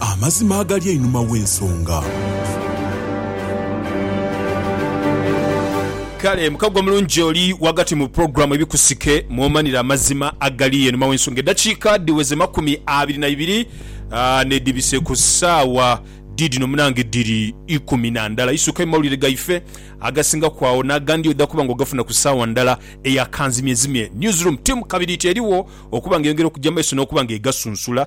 amazima agali einhuma w'ensonga. Kale mukagwa mulungi oli ghagati mu pulogulaamu Ebikusike mw'omanira amazima agali einhuma w'ensonga. Eddakiika dhiweze makumi abiri na ibiri n'edhibise ku ssaawa dhiidhino munange dhiri ikumi na ndala. Isuka mu mawulire gaife agasingaku agho n'agandi oidha kuba ng'ogafuna ku ssaawa ndala eya kanzimyezimye. Newsroom Team Kabiriiti eriwo okuba ng'eyongera okugya mu maiso n'okuba ng'egasunsula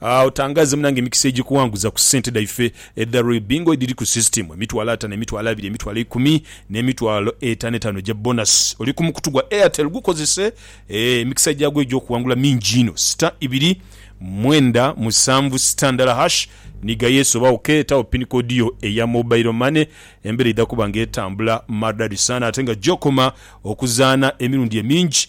Otangaze munange emikisa egikuwanguza ku sente dhaife edha Royal Bingo edhiri ku system, emitwalo atano, emitwalo abiri, emitwalo ikumi ne mitwalo etano etano egya bonus. Oli ku mukutu gwa Airtel gukozese eeh emikisa gyagwo egyokuwangula mingi inho. Star ibiri mwenda musanvu star ndala hash ni gha yes oba ok tawo pin code yo eya mobile money embera eidha kuba nga etambula maridadi sana ate nga gyokoma okuzaana emirundi emingi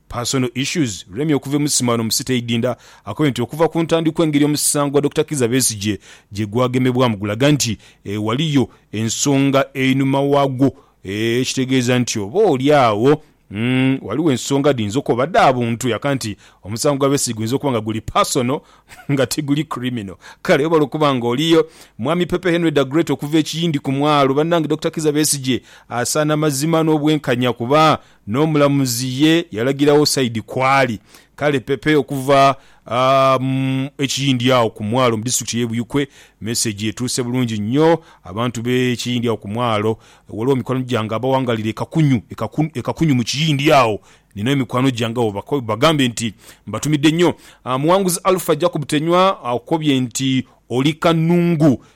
Personal Issues, Remmy okuva e Musima no mu City Idinda akobye nti okuva ku ntandikwa engeri omusango gwa Dokita Kizza Besigye gyegwagemebwamu gulaga nti ghaliyo ensonga einhuma wagwo ekitegeeza nti oba oli agho ghaligho ensonga dhiyinza okoba dha buntu yaka nti omusango gwa Besigye guyinza okuba nga guli personal nga tiguli criminal kale webale okuba nga oliyo Mwami Pepe Henry Da Great okuva e Kiyindi ku mwalo, Banange Dokita Kizza Besigye asaana mazima n'obwenkanya kuba N'omulamuzi ye yalagiragho saidi kw'ali. Kale pepe okuva mu e Kiyindi agho ku mwalo mu disitulikiti ey'e Buyikwe, mesegi etuuse bulungi nnyo abantu b'e Kiyindi agho ku mwalo. Ghaligho mikwano gyange abawangaalira e Kakunyu, e Kakunyu mu Kiyindi agho. Nina emikwano gyange agho bagambe nti mbatumidde nnyo. Muwanguzi Alpha Jacob Tenywa akobye nti oli kanungu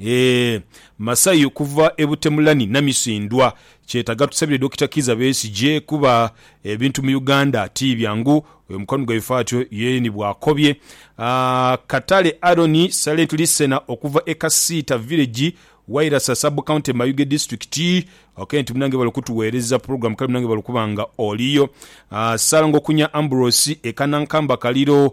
Eeh masayi okuva e Butemulani Namisindwa kyetaga tusabire Dokita Kiiza Besigye kuba ebintu mu Uganda ti byangu oyo mukwano gwaife atyo ye ni bwakobye Katale Aaron Silent Listener okuva e Kasiita Village Wairasa Sub County Mayuge District ok nti munange webale okutuwereza program kale munange webale okuba nga oliyo Ssalongo Kunya Ambrose e Kanankamba Kaliro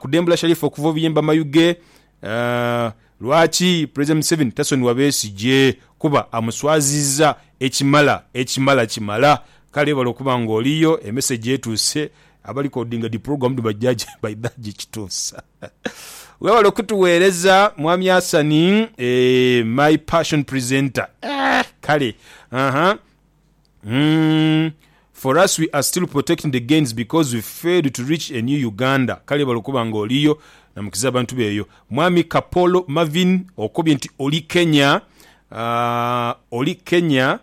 Kudembula Sharif okuva obuyemba mayu ge. Lwaki Pulezidenti Museveni tasonigha Besigye? Kuba amuswazizza ekimala ekimala kimala. Kale webale okuba nga oliyo. E message etuuse. Aba recordinga dhi program dhino bajja baidha jikituusa. Webale okutuweereza Mwami Hassan. Eeh my passion presenter eeh kale ahaa. Umm for us we are still protecting the gains because we failed to reach a new Uganda kale bale okuba nga oliyo namukiza abantu be eyo. Mwami Kapolo Marvin okobye nti oli Kenya aah oli Kenya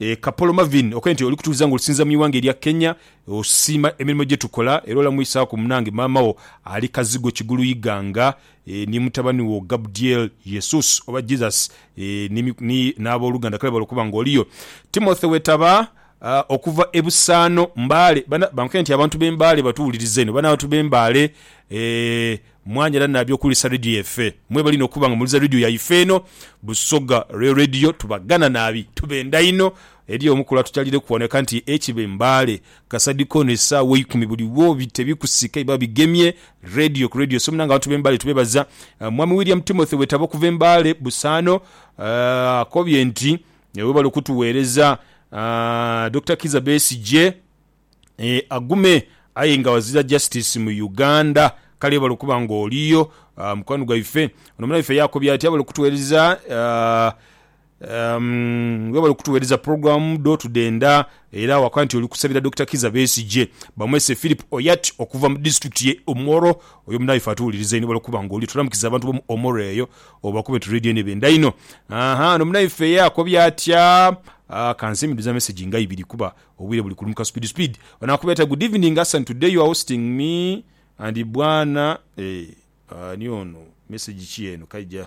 eeh Kapolo Marvin okobye nti oli kutubuza nga olusinza mu iwanga elya Kenya osiima emirimo gyetukola era olamwisaku munange maama wo ali Kazigo Kigulu Iganga ni mutabani wo Gabdiel, Yesus oba Jesus, ni, n'aboluganda, kale bale okuba nga oliyo. Timothy wetaba, okuva e Busaano, Mbale. Bana, bankoya nti abantu b'e Mbale batuwuliriza eno. Bano abantu b'e Mbale, mwanyala nabi okuwulisa Radio yaife. Mwebale inho okuba nga muwuliriza Radio yaife eno, Busoga Real Radio. Tubagana nabi. Tubenda inho. Eriyo omu kulwa tukyalireku wano yaka nti, Ekibe Mbale, Kasadi kono esaawa eikumi buli wo bita ebikusika biba bigemye Radio ku Radio so munange abantu be Mbale tubebaza Mwami William Timothy Wetaba okuva e Mbale Busaano akobye nti webale okutuweereza Dokita Kiiza Besigye agume aye nga azira Justice mu Uganda kale webale okuba nga oliyo mukwano gwaife. Ono munaife yakobye ati abale okutuweereza Umm webale kutuwereza program dho tudenda era wakola nti oli kusabira Dokita Kiza Besigye bamwese Phillip Oyat okuva mu district ye Omoro oyo munaye ife atuwuliriza inho webale kuba nga oliyo tulamukiza abantu bomu Omoro eyo obakube tu radio eno ebenda inho ahaa ono munaife ye akobye atya aah kanse miduza message nga ibiri kuba obwire buli kulumuka speed speed ono akubye atya good evening Hassan today your hosting me and bwana eeh ani ono message ki eno kaija.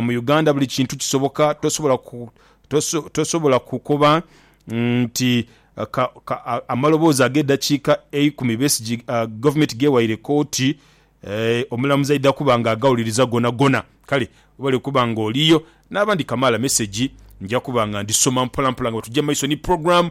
Mu Uganda buli kintu kisoboka, tosobola tosobola kukoba nti amaloboozi ag'edakiika eikumi Besigye gavumenti gewaire kooti, omulamuzi aidha kuba nga agawuliriza gonagona. Kale webale kuba nga oliyo. N'abandi kamaala mesegi nja kuba nga ndhisoma mpolampola nga bwe tugya mu maiso ni pulogulaamu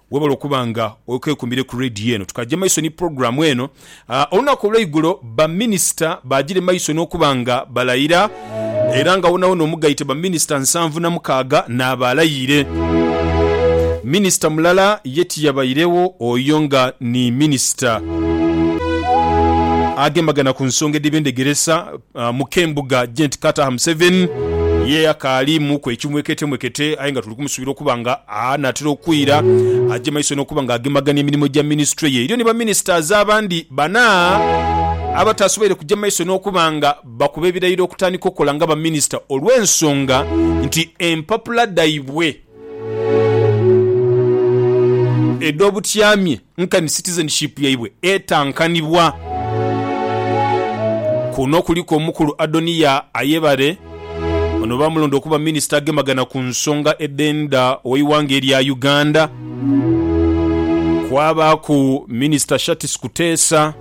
Webale okuba nga okekumire ku Radio eno. Tukaja maiso ni program eno. Olunaku olweigulo ba minister bajire maiso nokuba nga balayira era nga wonawona omugaite ba minister nsanvu na mukaaga naaba alayiire. Minister mulala ye tiyabairewo oyo nga ni minister agembagana ku nsonga edhebyendegeresa mu k'embuga Gent Kataha Museveni ye akaali mu ku ekimweketemwekete aye nga tuli kumusubira okuba nga anaatera okwira aje maiso n'okuba nga agemagania emirimo gya minisitule ye. Eriyo ni ba ministers abandi bana abataasoboire kuja maiso n'okuba nga bakuba ebirayiro okutandika okukola nga ba minisita olw'ensonga nti empapula dhaibwe edh'obutyamye Nkani citizenship yaibwe etankanibwa. Kuno kuliku omukulu Adoniya Ayebare, ono baamulonda okuba minisita agemagana ku nsonga edh'endha ow'eighanga erya Uganda. Kwabaaku minisita Shartis Kuteesa.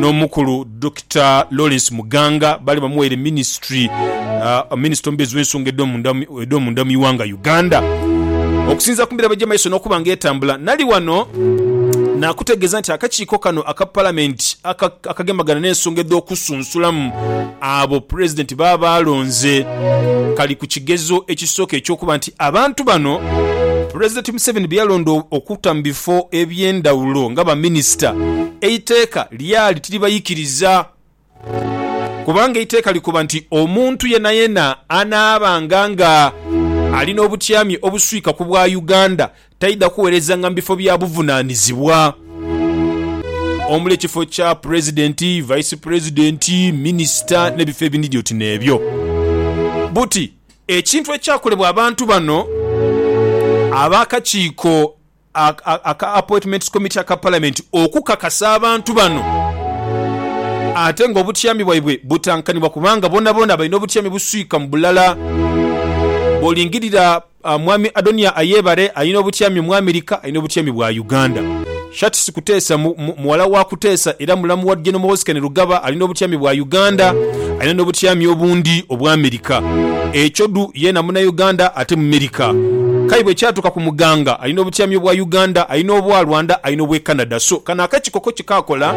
n'omukulu Dokita Lawrence Muganga baali bamuwaire minisitule minisita omubeezi w'ensonga edh'omunda mu ighanga Uganda. Okusinziira ku mirabo egy'emaiso n'okuba nga etambula, nali wano nakutegeeza nti akakiiko kano aka Palamenti akagemagana n'ensonga edh'okusunsulamu abo Pulezidenti baaba alonze kali ku kigezo ekisooka eky'okuba nti Abantu bano Pulezidenti Museveni be yalonda okuta mu bifo eby'endhawulo nga baminisita, eiteeka lyali tiribaikiriza kubanga eiteeka likoba nti omuntu yenayena anaabanga nga ali n'obutyami obuswika ku bwa Uganda taidha kuweerezanga mu bifo bya buvunaanizibwa omuli ekifo kya Pulezidenti, Vice Pulezidenti, minisita n'ebifo ebindhi oti n'ebyo. Buti Ekintu ekyakolebwa abantu bano ab'akakiiko aka Appointments Committee aka Palamenti okukakasa abantu bano ate nga obutyami bwaibwe butankanibwa kubanga boonaboona balina obutyami buswika mu bulala. Bw'olingirira Mwami Adoniya Ayebare alina obutyami mu Amerika, alina obutyami bwa Uganda. Shartsi Kuteesa, mu, mu, mughala wa Kuteesa era mulamu wa General Muhoozi Rugaba, alina obutyami bwa Uganda, alina n'obutyami obundi obwa Amerika. Ekyo dhu, yeena Munnauganda ate Mumerika. K'aye bwekyatuuka ku Muganga, alina obutyami obwa Uganda, alina obwa Rwanda, alina obw'e Canada. So, kano akekiko ko kye kaakola,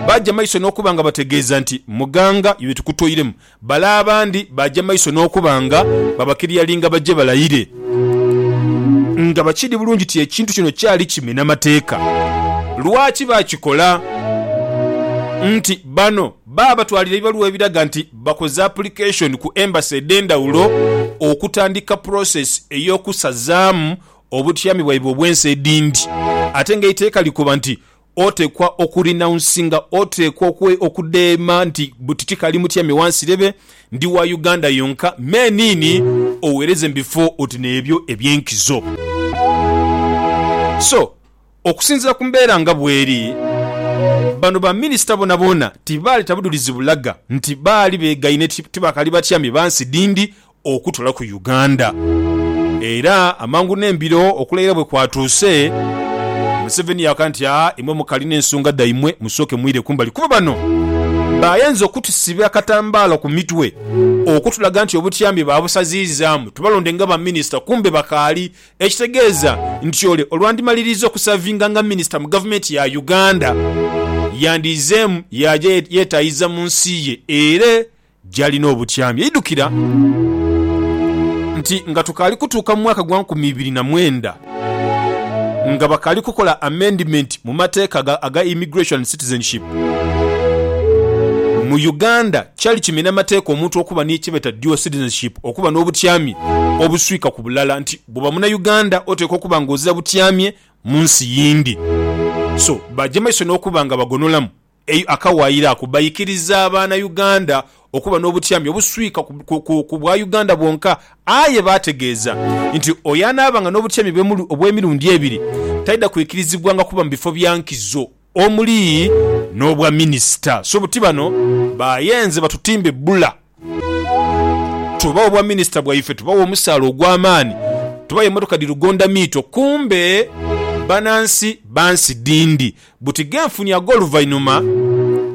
baaja maiso n'okuba nga bategeeza nti, Muganga, iwe tukutoiremu, Bale abandi baaja maiso n'okuba nga babakiriyalinga baje balayire nga bakiri bulungi nti ekintu kino kyali kimena Mateeka. Lwaki baakikola? Nti bano baabatwalira ebibaluwa ebiraga nti bakoze apulikeshoni ku Embassy edh'endhawulo okutandika pulosesi ey'okusazaamu obutyami bwaibwe obw'ensi edhindi ate ng'eiteeka likoba nti otekwa oku renouncinga, otekwa okudheema nti buti tikali mutyame wansi rebe ndi wa Uganda yonka me niini owereze mu bifo oti n'ebyo eby'enkizo. So okusinzira ku mbeera nga bweri, bano ba minisita bonaboona tibaaleta budhulizi bulaga nti baali begaine ti bakali batyame bansi dhindi okutola ku Uganda era amangu n'embiro okulayira bwe kwatuuse, Museveni yaaka nti aa imwe mukali n'ensonga dhaimwe musooke mwire kumbali kuba bano bayenze okutusiba akatambaala ku mitwe okutulaga nti obutyambi baabusaziizaamu tubalonde nga ba minisita kumbe bakaali ekitegeeza nti ole olwandimaliriiza okusavinga nga minisita mu gavumenti ya Uganda yandiizeemu yaaja yetaayiza mu nsi ye era gy'ali n'obutyami. Yaidhukira nti nga tukaali kutuuka mu mwaka gwa nkumi ibiri na mwenda, nga bakaali kukola amendimenti mu mateeka aga Immigration and Citizenship mu Uganda, kyali kimena mateeka omuntu okuba ni kyebeeta dual citizenship, okuba n'obutyami obuswika ku bulala, nti bwoba Munauganda oteekwa okuba nga ozira butyamye mu nsi yindi. So, baagya maiso n'okuba nga bagonolamu. Eyo akawaayiro ako baikiriza abaana Uganda okuba n'obutyami obuswika ku bwa Uganda bwonka aye baategeeza nti oyo anaabanga n'obutyami obw'emirundi ebiri taidha kwikirizibwanga kuba mu bifo bya nkizo omuli n'obwa minisita. So buti bano bayenze batutimbe bbula. Tubawa obwa minisita bwaife, tubawa omusaala ogw'amaani, tubawa emotoka dhi lugonda miito kumbe banansi ba nsi dhindi. Buti ghenfunye ag'oluvainhuma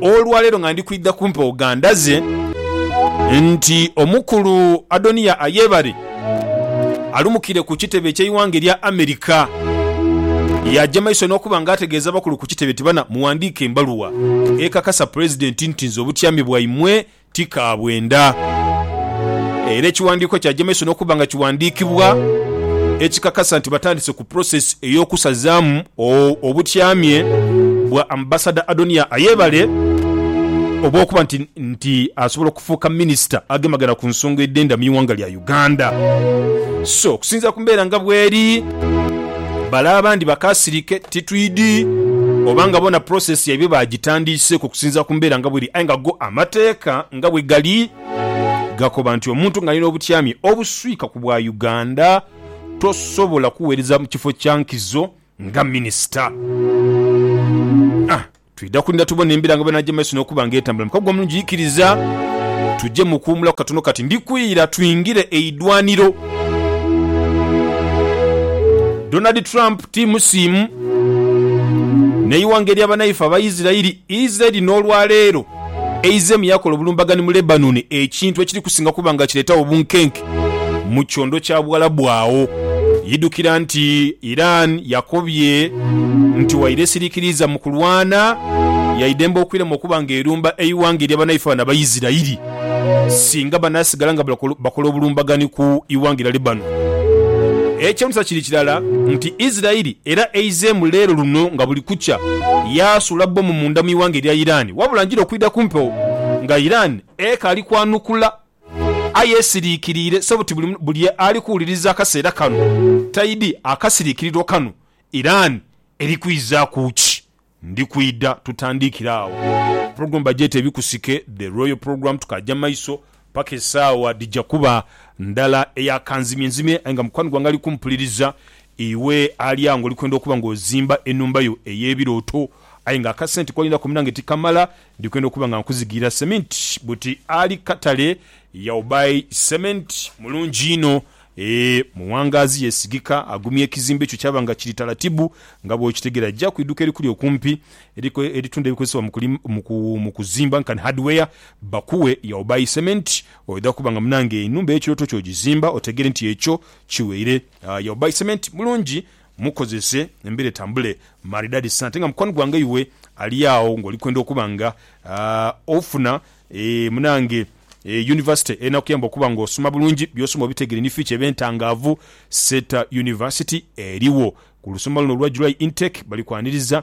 olwaleero nga ndi kwidha ku mpewo gandaze nti omukulu Adoniya Ayebare alumukire ku kitebe eky'eighanga erya America. Yaaja maiso n'okuba nga ategeeza abakulu ku kitebe nti bana muwandiike embaluwa ekakasa Pulezidenti nti nze obutyame bwaimwe ti ka bwenda. Era ekiwandiiko kya Jameson okuba nga kiwandiikibwa ekikakasa nti batandise ku process ey'okusazaamu obutyamye bwa Ambassador Adoniah Ayebare obw'okuba nti asobola okufuuka Minisita agemagana ku nsonga edh'endamyu ighanga lya Uganda. Uganda. So okusinziira ku mbeera nga bweri, bale abandi bakasirike titwidi oba nga bona process yaibwe bagitandiiseku okusinziira ku mbeera nga bweri aye nga go amateeka nga bwegali gakoba nti omuntu nga ali n'obutyami obuswika ku bwa Uganda tosobola kuweereza mu kifo kya nkizo nga Minisita. Twidha kulinda tubone embiranga bw'enaaja mu maiso n'okuba nga etambula mu kaguwa omulungi. Ikiriza tuje mu kuwumulaku katono kati. Ndi kwira twingire eidwaniro. Donald Trump ti musiimu n'eighanga ery'abanaife Abaisiraeli. Isiraeli n'olwaleero eizeemu yaakola obulumbagani mu Lebanoni, ekintu ekiri kusinga kuba nga kireetagho obunkenke. mu kyondo kya Buwalabu agho. Idhukira nti Iran yakobye nti waire esirikiriiza mu kulwana, yaidembe okwirema okuba nga erumba eighanga erya banaife bano Abaisirairi singa banaasigala nga bakola obulumbaganhi ku ighanga erya Lebanon. Ekyeunhisa kiri kirala nti Isirairi era eizeemu leero luno nga buli kukya yaasuula bbomu munda mu ighanga erya Iran wabula njira okwidha ku mpewo nga Iran ekaali kwanukula. Aye esiriikiriire so buti buli ali kuwuliriza akaseera kano taidhi akasiriikirirwa kano. Iran eri kwizaaku ki? Ndi kwidha tutandiikire agho. Pulogulamu bagyeta Ebikusike, The Royal Programme. Tukaagya mu maiso paka esaawa dhija kuba ndala eya kanzimyenzimye. Aye nga mukwano gwange ali kumpuliriza, iwe ali agho ng'oli kwenda okuba ng'ozimba enhumba yo ey'ebirooto aye ng'akasente k'olinako munange tikamala, Ndi kwenda okuba nga nkuzigira cement buti ali katale your buy cement mulungi inho ee muwangazi yesigika agumya ekizimbe kyo kyaba nga kiri talatibu nga bwokitegera ja kwiduka erikuli okumpi eritunda ebikozesebwa mu kuzimba nkan hardware bakuwe your buy cement oidha kuba nga munange enhumba eyekiroto kyo ogizimba otegere nti ekyo kiweire your buy cement mulungi mukozese embera etambule maridadi sa ate nga mukwano gwange iwe ali agho nga oli kwenda okuba nga ofuna eeh munange eeh University enakuyamba okuba nga osoma bulungi byosoma obitegere ni future ebe ntangaavu Seeta University erigho ku lusoma luno olwa July intake bali kwaniriza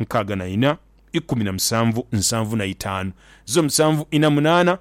nkaaga na ina, ikumi na musanvu, nsanvu na itaanu, zo musanvu ina munaana,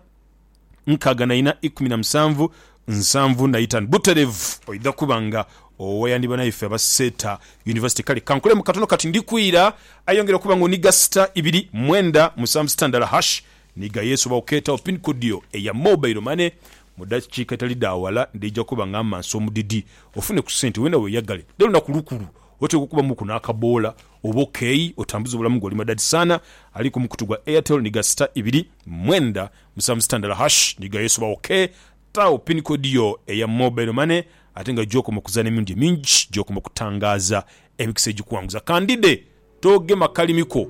nkaaga na ina, ikumi na musanvu, nsanvu na itaanu. Buterevu oidha kuba nga owayandi banaife aba Seeta University. Kale kankolemu katono kati ndi kwira. Aye yongera okuba nga oniga star ibiri, mwenda, musanvu sita ndala hash. Niga Yesu oba okeetawo pin code yo eya mobile money. Mu dakiika edhitali dha wala ndidha kuba nga mmansa omudidi ofune ku sente weena weyagale. Dha lunaku lukulu Oteekwa okuba muku n'akaboola oba okeeyi otambuze obulamu bwo. Oli madadi sana ali ku mukutu gwa Airtel ni ga sita ibiri mwenda musanvu sita ndala hash ni ga yesu ba ok. Taagho pin code yo eya mobile money ate nga gy'okoma okuzaana emirundi emingi gy'okoma okutangaaza emikisa egikuwanguza. Kandide togema kalimi ko.